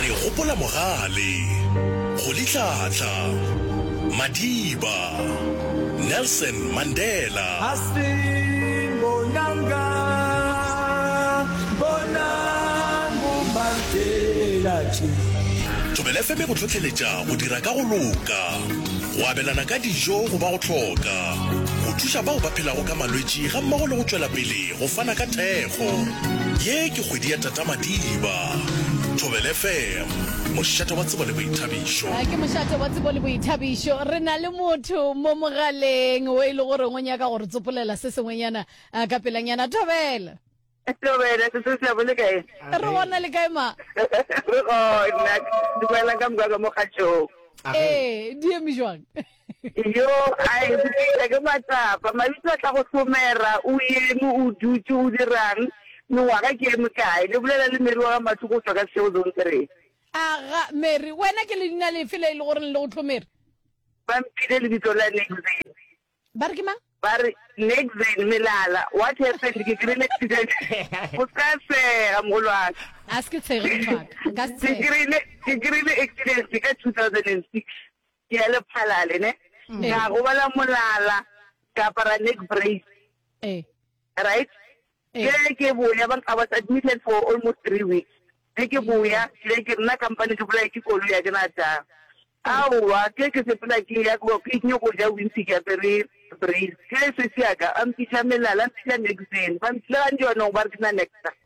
Re gopola Mogale, Kgolitlhatlha, Madiba, Nelson Mandela. Hastin Bonanga, Bonang Bomartela tše. Thobela FM e go hlohleletša go dira ka go loka, go abelana ka dijo go ba go hloka, go thuša bao ba phelago ka malwetši gammogo le go tšwela pele Go fana ka thekgo. Ye ke kgwedi ya Tata Madiba. Thobel FM, mošate wa tsebo le boithabišo. Ke mošate wa tsebo le boithabišo. Re na le motho mo mogaleng o e le goreng o nyaka go re tsopolela se sengwenyana ah, ka pelanyana. Thobela. Thobela, Sesotho la bo le kae? Re gona le kae ma? Re gona. Dumela ka moka ka mo kgatšong. Ee, di eme jwang? Yo a e bopša ke matsapa. Mabitso a tla go hlomera, o eme, o dutše, o dirang, mengwaga ke ye mekae? Le bolela le Mary wa ga Mathu go tšwa ka Seshego Zone Three. Aga, Mary, wena ke leina lefe le e le goreng le go hlomere? Ba mphile lebitso la Nexane. Ba re ke mang? Ba re, Nexane, Melala. What happened? Ke kry-ile accident. O se ka tshega, mogolo wa ka. A se ke tshege, motho wa ka. Nka se tshege. Ke kry-ile accident ka two thousand and six. Ke a le phalale ne. Ka gobala molala, ka apara neck brace. Eh. Right? Ke re ke boya, ba I was admitted for almost three weeks. Ge ke boya, ke re ke nna kampane ke bolaye ke koloi a ke na taba. Aowa, ke re ke sepela ke ya ko ke nyoko go ja wimpy ke apere brace. Ke re sesi ya ka a mpitša melala, a mpitša neck brace. Ba mpitša le gantši ba no ba re ke na neck brace.